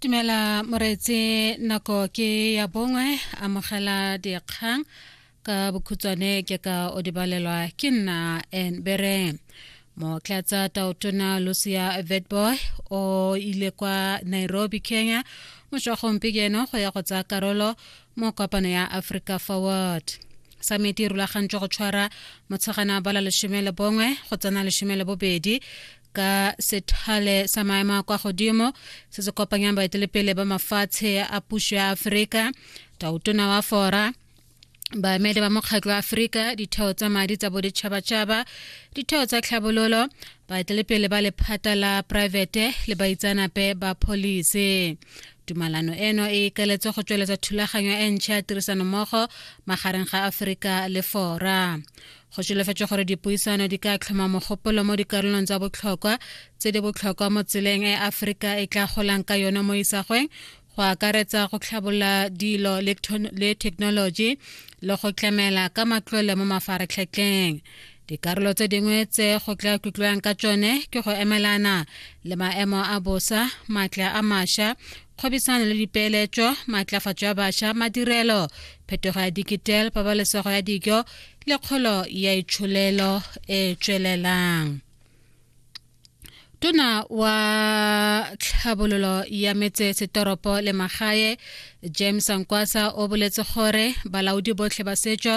dumela moreetse nako ke ya bongwe amogela dikgang ka bokhutshwane ke ka o dibalelwa ke nna en bere motlatsa taotona lucia vetboy o ile kwa nairobi kenya mošwagong pekeno go ya go tsaya karolo mo kopano ya africa forward samiti e rulagantswe go tshwara motshegana bala lesome le bongwe go tsena lesome le bobedi ka sethale sa maemo a kwa godimo se se kopanyang baetelepele ba mafatshe a puso ya aforika tautona wa fora baemedi ba mokgatlho wa aforika ditheo tsa madi tsa boditšhabatšhaba ditheo tsa tlhabololo baetelepele ba lephata la poraefete le baitsanape ba pholisi tumalano eno e ikaletse go tsweletsa thulaganyo e ntšha ya tirisanommogo magareng ga aforika le fora go solofetswe gore dipuisano di ka tlhoma mogopolo mo dikarolong tsa botlhokwa tse di botlhokwa mo tseleng e aforika e tla golang ka yone mo isagweng go akaretsa go tlhabolola dilo le thekenoloji le go tlamela ka matlole mo mafaratlhatlheng dikarolo tse dingwe tse go tla tlotliwang ka tsone ke go emelana le maemo a bosa maatla a masha kgwebisano le dipeeletso maatlafatso ya basha madirelo phetogo ya digital pabalesego ya dijo le kgolo ya itsholelo e e tswelelang tona wa tlhabololo ya metse setoropo le magae james ankwasa o boletse gore balaodi botlhe ba setso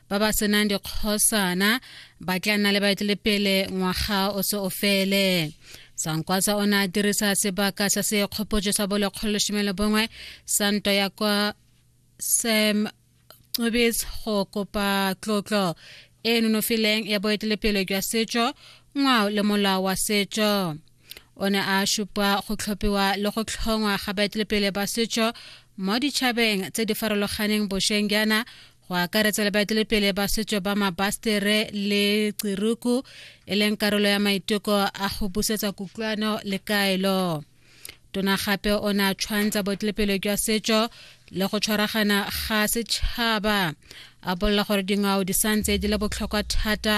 ba ba senang dikgosana ba tla nna le baetelepele ngwaga o se o fele sankwasa o ne a dirisa sebaka sa sekgopotso sa bolekgolo lesome le bongwe sa nto ya kwa sam qobetse go kopa tlotlo e nonofileng ya boetelepele jwa setso ngwao le molao wa setso o ne a šupa go tlhophiwa le go tlhongwa ga baetelepele ba setso mo ditšhabeng tse di farologaneng bošweng jaana go akaretsa le baetelepele ba setso ba mabastere le tsiruku e leng karolo ya maiteko a go busetsa kutlwano le kaelo tona gape o ne a tshwantsa botlepelo jwa setso le go tshwaragana ga setšhaba a bolela gore dingwao di santse di le botlhokwa thata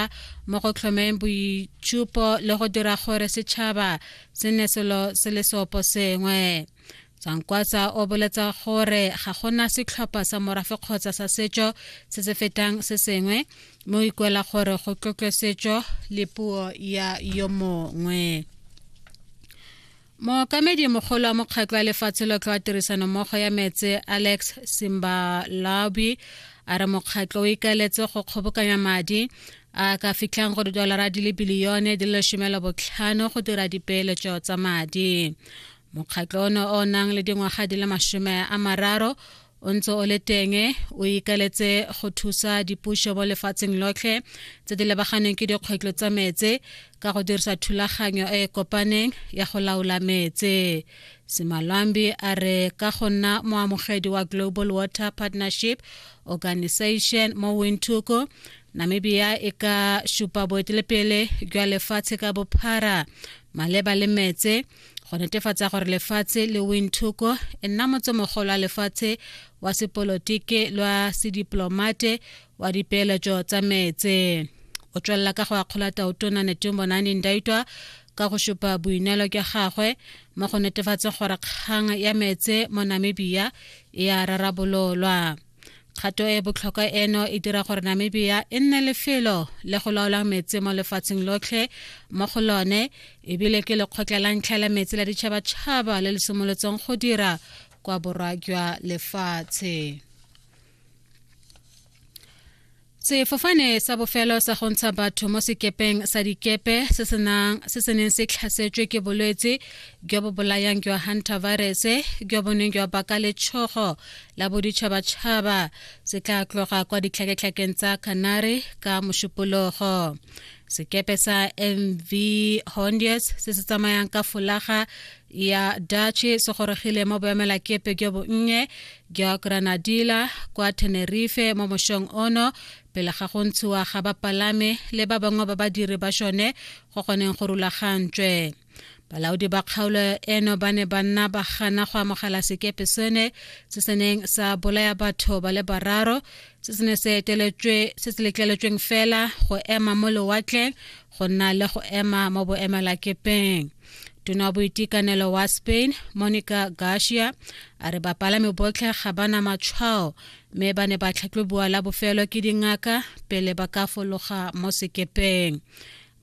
mo go tlhomeng boitshupo le go dira gore setšhaba se ne selo se le seopo sengwe tsankwatsa o boletsa gore ga gona setlhopha sa morafe kgotsa sa setso se se fetang se sengwe mo ikwela gore go tlotlwe setso le puo ya yo mongwe mookamedi mogolo wa mokgatlho wa lefatshe lotlhe wa tirisanommogo ya metse alex simbalabi a re mokgatlho o ikaeletse go kgobokanya madi a ka fitlhang go didolara di le bilione di le lesomelo botlhano go dira dipeeletso tsa madi mokgatlho ono o nang le dingwaga di le masome a mararo o ntse o le teng o ikaletse go thusa dipuso mo lefatsheng lotlhe tse di lebaganeng ke dikgwetlho tsa metse ka go dirisa thulaganyo e e kopaneng ya go laola metse simalwambi a re ka go nna moamogedi wa global water partnership organization mo windhoek namibia e ka supa boetelepele jwa lefatshe ka bophara maleba le metse go netefatsa gore lefatshe le winthoko e nna motsomogolo wa lefatshe wa sepolotike lwa sediplomate wa dipeeletso tsa meetse o tswelela ka go akgola taotona netumbonani ndaitwa ka go supa boineelo ke gagwe mo go netefatse gore kgang ya meetse mo namibia e a rarabololwa kgato e botlhokwa eno e dira gore namibia e nne lefelo le go laolang metsi mo lefatsheng lotlhe mo go lone ebile ke lekgotla la ntlha la metsi la ditšhabatšhaba le le simolotseng go dira kwa borwa jwa lefatshe sefofane sa bofelo sa go ntsha batho mo sekepeng sa dikepe se se neng se tlhasetswe ke bolwetse jo bo bolayang jwa hunter virus jo bo neng jwa baka letshogo la boditšhabatšhaba se tla tloga kwa ditlhaketlhakeng tsa canary ka mošupologo sekepe sa mv hondius se se tsamayang ka folaga ya Dutchy se gorogile mo boemelakepe jo bonnye jwa Granadilla kwa Tenerife mo mošong ono pele ga go ntshiwa ga bapalami le ba bangwe ba badiri ba šone go goneng go rulagantswe balaodi ba kgaolo eno ba ne ba nna ba gana go amogela sekepe sone se se neng sa bolaya batho ba le bararo se se ne se letleletsweng fela go ema mo lewatleng go nna le go ema mo boemelakepeng tona wa boitekanelo wa spain monica garcia a re bapalami botlhe ga ba na matshwao mme ba ne ba tlhatlhobiwa la bofelo ke dingaka pele ba ka fologa mo sekepeng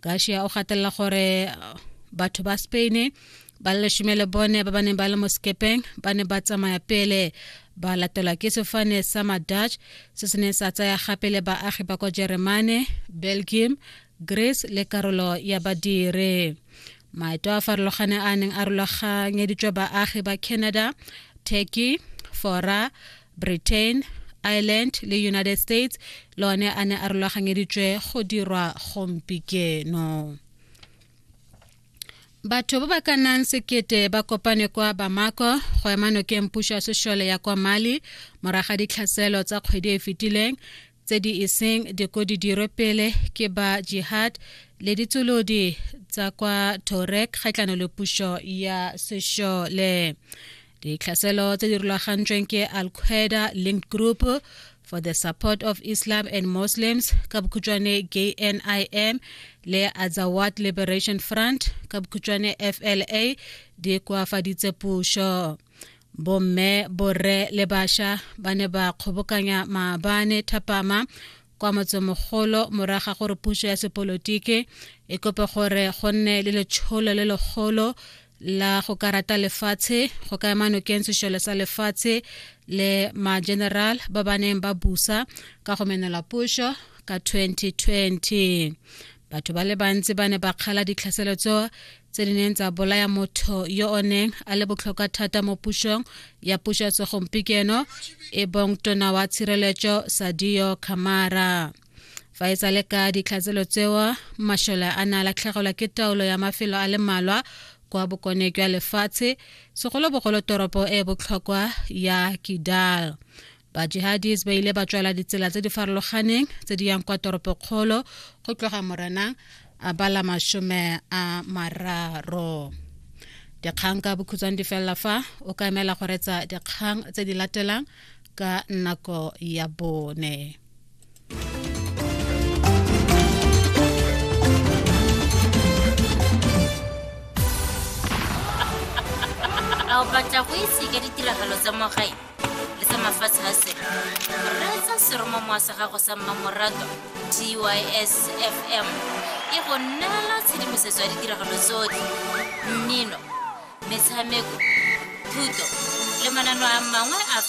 garcia o gatelela gore batho ba spain ba le lesome le bone ba ba neng ba le mo sekepeng ba ne ba tsamaya pele ba latelwa ke sefane sa madutch se se neng sa tsaya gape le baagi ba kwa jeremane belgium grace le karolo ya badire maeto a farologane a neng a rulaganyeditswe baagi ba canada turkey fora britain ireland le united states le one a ne a rulaganyeditswe go dirwa gompikeno batho ba ba ka nnang sekete ba kopane kwa bamako go ema nokeng puso ya sešole ya kwa mali moraga ditlhaselo tsa kgwedi e fetileng tse di iseng diko di dirwe pele ke ba jihad le ditsolodi tsa kwa torek kgatlhano le puso ya sešole ditlhaselo tse di rulagantsweng ke al qaeda linked group for the support of islam and muslims ka bokhutšwane knim le azawad liberation front ka bokhutšwane fla di koafaditse puso bomme borre le basha ba ne ba kgobokanya maabane thapama kwa motsemogolo moraga gore puso ya sepolotiki e kope gore go nne le letsholo le legolo la go ka rata lefatshe go ka ema nokeng sešole sa lefatshe le ma-general ba ba neng ba busa ka go menela puso ka 2020 batho ba le bantsi ba ne ba kgala ditlhaselo tso tse di neng tsa bolaya motho yo o neng a le botlhokwa thata mo pusong ya puso ya segompieno e bong tona wa tshireletso sadio camara fa e tsale ka ditlhatselo tseo masole a ne a latlhegelwa ke taolo ya mafelo a le malwa kwa bokone jwa lefatshe segolobogolo toropo e botlhokwa ya kidal bajihadis ba ile ba tswela ditsela tse di farologaneng tse di yang kwa toropokgolo go tloga morenang a bala masome a mararo dikgang ka bokhutshwane di felela fa o ka emela go retsa dikgang tse di latelang ka nako ya bone a o batla go ise ka ditiragalo tsa mo gae le tsa mafatshe a selo reetsa seromamowa sa gago sa mmamoratwa tys fm e go neela tshedimosetso ya ditiragalo tsotlhe mmino metshameko thuto le manano a mangwe a